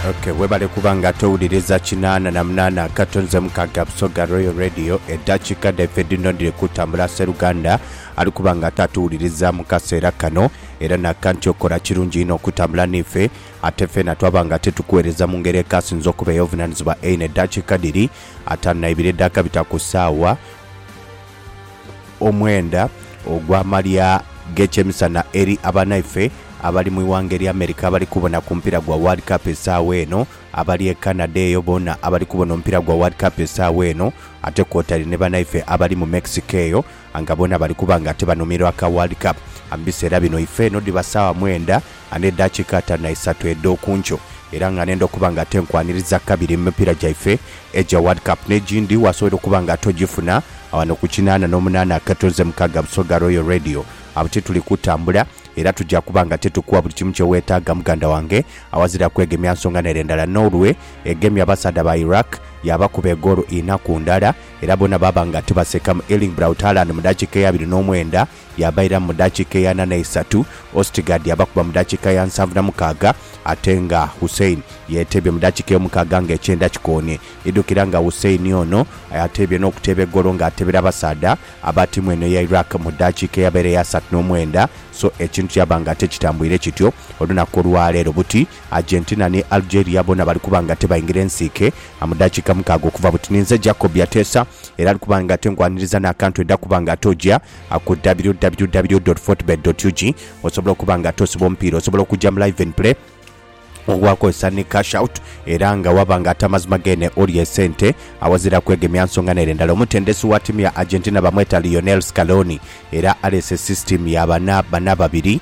Okay, webale kuba nga towuliriza kinaana na munaana akato nze mukaaga Busoga Royal Radio eddakiika dhaife dhino dhiri kutambula sseruganda ali kuba nga tatuwuliriza mu kaseera kano era naka nti okola kirungi inho okutambula n'ife ate ffena twaba nga tetukuweereza mu ngeri ekaasinze okuba ey'obuvunaanyizibwa eino eddakiika dhiri ataano na ibiri edhaakabita ku ssaawa Omwenda ogw'amalya g'ekyemisana eri abanaife abali mu ighanga erya America abali kubona ku mupiira gwa World Cup esaawa eno, abali e Canada eyo boona abali kubona omupiira gwa World Cup esaawa eno ate kwotaire ni banaife abali mu Mexico eyo nga boona bali kuba nga ate banomerwa aka World Cup. Mu biseera bino ife eno dhiba saawa mwenda a n'edhakiika ataanu na isatu edh'oku nkyo era nga nenda okuba nga tenkwaniriza kabiri mu mipiira gyaife egya World Cup n'egindi waasobola okuba nga togifuna wano ku kinaana n'omunaana akatunzi mukaaga Busoga Royal Radio awo tituli kutambula era tugya kuba nga titukuwa buli kimu kye weetaaga muganda wange awazira kwegemya nsonga n'ere ndala Norway egemye abasaadha ba Iraq yaabakuba egoolo inha ku ndala era boona baaba nga tibasekamu Erling Braut Haaland mu ddakiika eya abiri n'omwenda Yabairamu mu dakiika eya ana n'eisatu, Ostigard yabakuba mu dakiika ya nsanvu na mukaaga ate nga Hussein yeeteebye mu dakiika ey'omukaaga nga ekyenda kikoonie. Idhukira nga Hussein ono ateebye n'okuteeba egoolo nga ateebera abasaadha aba ttiimu eno eya Iraq mu dakiika eyabaire ey'asatu n'omwenda so ekintu kyaba nga tikitambwire kityo olunaku olwaleero buti. Argentina ni Algeria boona bali kuba nga tebaingira ensiike mu daakiika mukaaga okuva buti. Ninze Jacob Yateesa era ali kuba nga tengwaniriza n'akantu edha kuba nga ate oja ku www dot fortebet dot ug osobola okuba nga ate osiba omupiira. Osobola okuja mu Live and Play ogwakozesa ni Cash Out era nga waba nga ate amazima geene olya esente awazira kwegemya nsonga n'ere ndala. Omutendesi wa tiimu ya Argentina bamweta Lionel Scaloni era aleese sisitiimu ya bana bana babiri.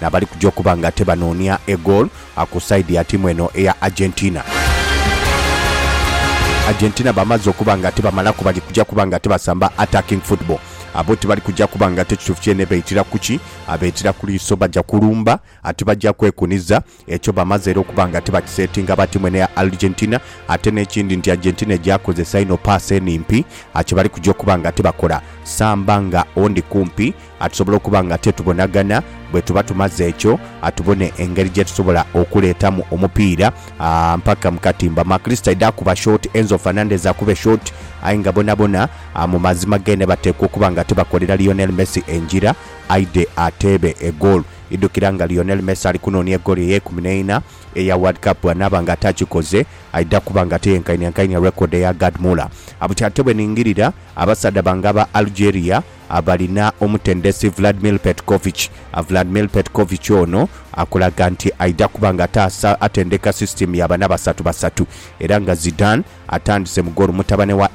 n'abali kuja okuba nga ate banoonia egoolo ku sayidi ya tiimu eno eya Argentina. Argentina bamaze okuba nga ate bamalaku bali kuja kuba nga ate basamba attacking football. Abo tibali kuja kuba nga ate kituufu kyene beitira ku ki? Beitira ku liiso, baja kulumba ate baja kwekuniza. Ekyo bamaze era okuba nga ate bakisetinga aba tiimu eno eya Argentina. Ate n'ekindi nti Argentina egyakozesa inho paasi enimpi, kye bali kuja okuba nga ate bakola samba nga ondi kumpi. Atusobola okuba nga tetubonagana, bwetuba tumaze ekyo atubone engeri gyetusobola okuleetamu omupiira mpaka mu katimba. Maklist aidha kuba short, Enzo Fernandez akube short aye nga bonabona mu mazima gene bateekwa okuba nga tibakolera Lionel Messi engira aidhe ateebe egoolo. Idhukira nga Lionel Messi ali kunoonia egoolo ey'eikumi n'eina eya World Cup bw'anaaba nga atakikoze aidha kuba nga teyenkainiankainia record eya Gerd Muller. Bukyatebweningirira, abasaadha bange aba Algeria Abalina omutendesi Vladimir Petkovic, Vladimir Petkovic ono akulaga nti aidha kuba nga ataasa atendeka sisitiimu ya bana basatu basatu era nga Zidane atandise mu goolo mutabane wa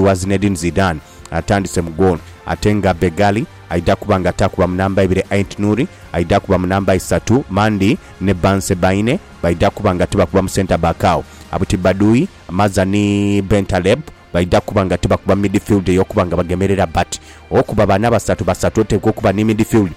wa Zinedine Zidane atandise mu goolo ate nga Begali aidha kuba nga taakuba mu namba ibiri, Aintnouri aidha kuba mu namba isatu, Mandi ni Bensebaine baidha kuba nga tibakuba mu centre back agho Abtibadui, Maza ni Bentaleb baidha kuba nga tibakuba midfield ey'okuba nga bagemerera but okuba baana basatu basatu oteekwa okuba ni midfield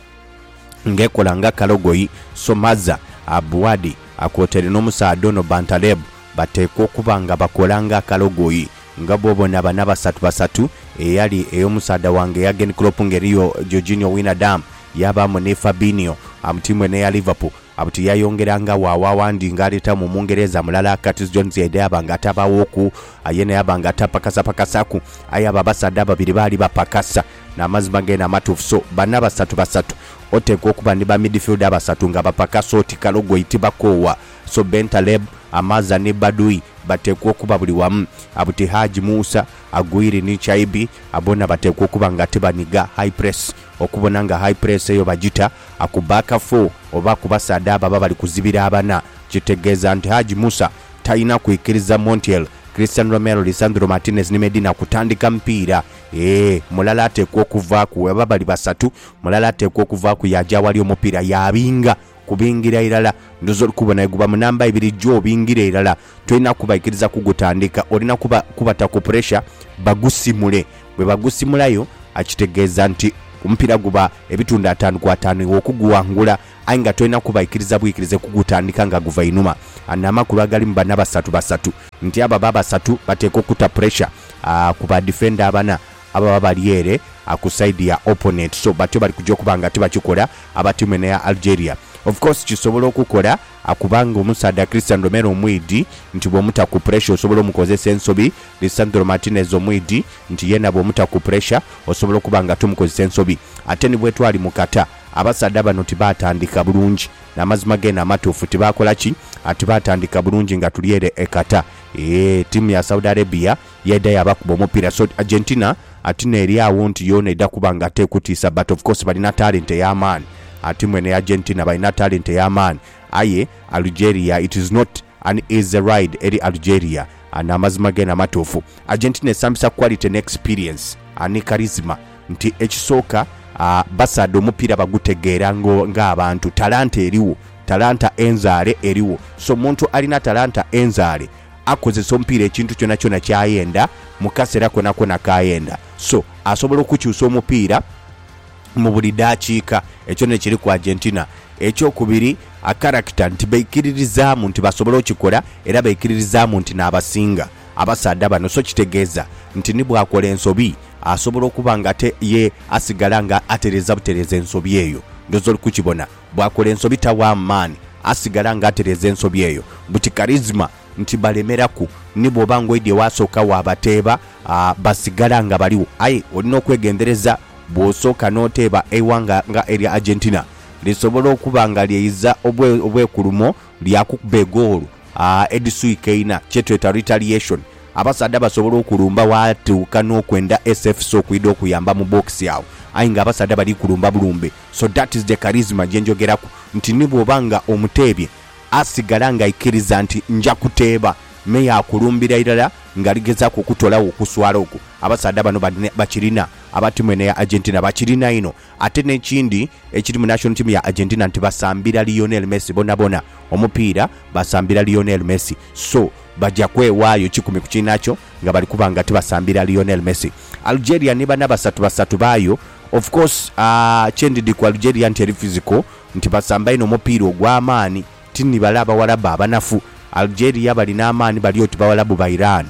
nga ekola nga Kalogoyi, Somaza, Abuadi kwotaire n'omusaadha ono Bantaleb bateekwa okuba nga bakola nga Kalogoyi. Nga bw'obona baana basatu basatu eyali ey'omusaadha wange Jurgen Klopp nga eriyo Georginio Wijnaldum yaabaamu ni Fabinho, tiimu eno eya Liverpool, Abuti yayongeranga waawaawa ndi ng'aleetamu Omungereza mulala, Curtis Jones yaidha yaaba nga atabaawooku. Aye naye aba nga tapakasapakasaku. Aye abo abasaadha ababiri baali bapakasa. N'amazima geene amatuufu. So, bana basatu basatu. Oteekwa okuba ni ba midfielder abasatu nga bapakasa oti kalogoyi tibakoowa. So, Bentaleb, Amaza ni Baduy bateekwa okuba buli wamu. Abuti Haji Musa, Aguirre ni Chaibi, boona bateekwa okuba nga tibaniga high press. Okubona nga high press eyo bagita akuba akafu oba ku basaadha abo ababali kuzibira abana kitegeeza nti Hajj Musa talina kwikiriza Montiel, Christian Romero, Lisandro Martinez ni Medina kutandika mupiira. Eeh mulala ateekwa okuvaaku oba bali basatu mulala ateekwa okuvaaku yaaja awali omupiira yaabinga kubingira irala. Ndoza oli kubona bweguba mu namba ibiri jjo obingira irala. Tolina kubaikiriza kugutandika, olina kuba kubata ku puresha bagusimule. Bwe bagusimulayo kitegeeza nti omupiira guba ebitundu ataanu ku ataanu iwe okuguwangula aye nga tolina kubaikiriza bwikirize kugutandika nga guva einhuma. Ano amakulu agalimu bana basatu basatu nti abo aba basatu bateekwa okuta puresha ku ba difenda abana ababa bali ere ku sayidi ya oponenti. So batyo bali kugya okuba nga tibakikola aba tiimu eno eya Algeria. Of course kisobola okukola. Akubanga omusaadha Christian Romero omwidhi nti bw'omuta ku puresha osobola omukozesa ensobi, Lisandro Martinez omwidhi nti yeena bw'omuta ku puresha osobola okuba nga tomukozesa ensobi. Ate ni bwetwali mu Qatar, abasaadha bano tibaatandika bulungi. N'amazima geene amatuufu, tibaakola ki? Tibaatandika bulungi nga tuli ere e Qatar. Eeh, ttiimu ya Saudi Arabia. Yaidha yabakuba omupira so Argentina ati n'eri agho nti yoona eidha kuba nga tekutiisa but of course balina talent ey'amaani ati mwene Argentina balina talent ey'amaani aye Algeria it is not an easy ride eri Algeria ano amazima geene amatuufu Argentina esambisa quality ne experience ni charisma nti ekisooka basaadha omupira bagutegeera nga abantu talanta erigho talanta enzaale erigho so omuntu alina talanta enzaale akozesa omupiira ekintu kyonakyona kyayenda mukasera konakona kayenda so asobola okukyusa omupiira mubuli dakiika ekyo nekiri ku Argentina ekyokubiri akarakita nti beikiririzamu nti basobola okikola era beikiririzamu nti nabasinga abasaadha bano so kitegeza nti nibwakola ensobi asobola okuba nga ate ye asigala nga atereza butereza ensobi eyo ndoza olikukibona. Bw'akola ensobi tawa maani, asigala nga atereeza ensobi eyo. Buti karizima nti balemeraku, ni bw'oba ng'oidye waasooka waabateeba, basigala nga baligho. Aye olina okwegendereza bw'osooka n'oteeba eighanga nga erya Argentina. Lisobola okuba nga lyeyiza obwekulumo lyakukuba egoolo edhiswika eina, kye tweta retaliation. Abasaadha basobola okulumba waatuuka n'okwenda SFC okwidha okuyamba mu bookisi agho. Aye ng'abasaadha bali kulumba bulumbe, So that is the charisma gyenjogeraku nti ni bwoba nga omuteebye asigala nga aikiriza nti nja kuteeba me yakulumbira irala nga aligezaku okutolawo okuswala okwo. Abasaadha bano balina bakirina aba tiimu eno eya Argentina bakirina inho ate nekindi ekiri mu national team ya Argentina nti basambira Lionel Messi bonabona omupiira basambira Lionel Messi so baja kwewaayo kikumi ku kiinakyo. nga bali kuba nga tibasambira Lionel Messi. Algeria ni bana basatu basatu baayo. Of course kye ndidhi ku Algeria nti eri physical, nti basamba inho omupiira ogw'amaani. Ti ni bale Abawarabu abanafu. Algeria balina amaani bali oti Bawarabu ba Iran.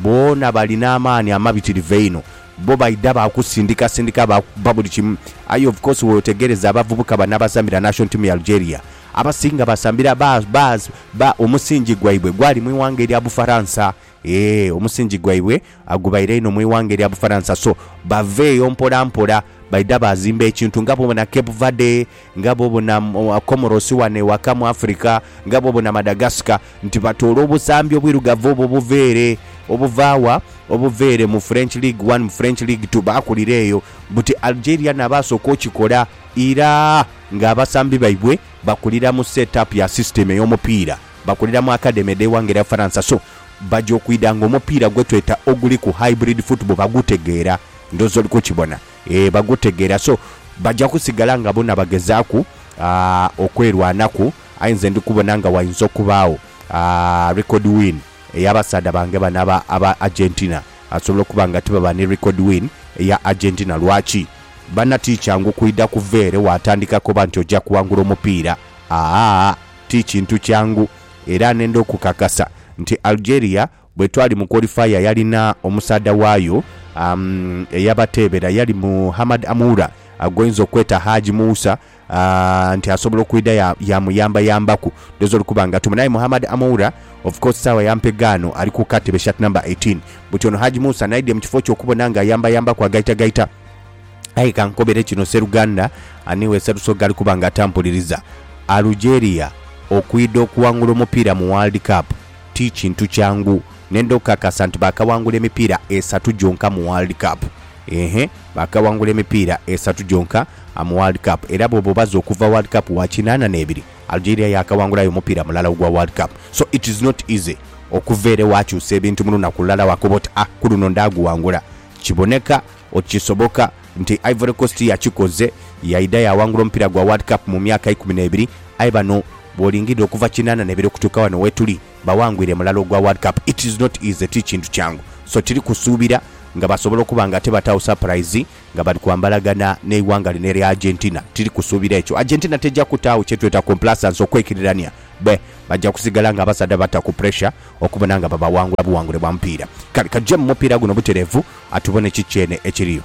Boona balina amaani amabitirivu einho. Bbo baidha baakusindikasindika baakukuba buli kimu. Aye of course weotegereza abavubuka bano abasambira national team ya Algeria, abasinga basambira ba, ba, ba, omusingi gwaibwe gwali mu ighanga erya Bufaransa. Eeh omusingi gwaibwe agubaire inho mu ighanga erya Bufaransa so bava eyo mpola mpola baidha bazimba ekintu nga bwobona Cape Verde, nga bwobona Comoros wano ewaka mu Africa, nga bwobona Madagascar nti batoola obusambi obwirugavu obwo obuva ere. Obuva wa? Obuva ere mu French League One, mu French League Two baakulira eyo. Buti Algeria na baasooka okikola ira nga abasambi baibwe bakulira mu set up ya system ey'omupiira. Bakulira mu akademi edh'eighanga erya Faransa so baja okwidha nga omupiira gwe tweta oguliku hybrid football bagutegeera. Ndhooza oli kukibona. Eeh bagutegeera so baja kusigala nga bona bagezaaku okwerwanaku aye nze ndi kubona nga wainza okubaagho record win ey'abasaadha bange bano aba aba Argentina. Asobola okuba nga tibaba ni record win eya Argentina. Lwaki? Bana ti kyangu kwidha kuva ere waatandika koba nti oja kuwangula omupiira. Aah! Ti kintu kyangu era nenda okukakasa nti Algeria bwetwali mu qualifier yalina omusaadha waayo eyabateebera yali Muhammad Amoura gwoyinza okweta Haji Moussa nti asobola okwidha yamuyambayambaku dozo olikuba nga tumu aye Muhammad Amoura of course saawa ya mpegaano ali ku katebe shirt number eighteen buti ono Haji Moussa naidha mu kifo kye okubona nga ayambayambaku agaitagaita Aye kankobere kino, seruganda ani we Sserusoga ali kuba nga atampuliriza? Alugeria okwidha okuwangula omupiira mu World Cup ti kintu kyangu. Nenda okukakasa nti baakawangula emipiira esatu gyonka mu World Cup. Eehhe baakawangula emipiira esatu gyonka mu World Cup era bw'oba obaze okuva World Cup wa kinaana n'ebiri, Algeria yaakawangulayo omupiira mulala ogwa World Cup. So it is not easy okuva ere waakyusa ebintu mu lunaku lulala waakoba oti, ah ku luno ndaaguwangula. Kiboneka oti kisoboka nti Ivory Coast yakikoze yaidha yaawangula omupiira gwa World Cup mu myaka eikumi n'ebiri aye bano bw'olingirira okuva kinaana n'ebiri okutuuka wano wetuli bawangwire mulala ogwa World Cup it is not easy ti kintu kyangu so tiri kusuubira nga basobola okuba nga ate bataawo surprise nga bali kwambalagana n'eighanga lino erya Argentina tiri kusuubira ekyo Argentina teja kutaawo kyetweta complacense okwekirirania bbe baja kusigala nga abasaadha bata ku pressure okubona nga babaghangula bughangule bwa mupiira. Kale kajemu mupiira guno butereevu atubone kiki eno ekiriyo.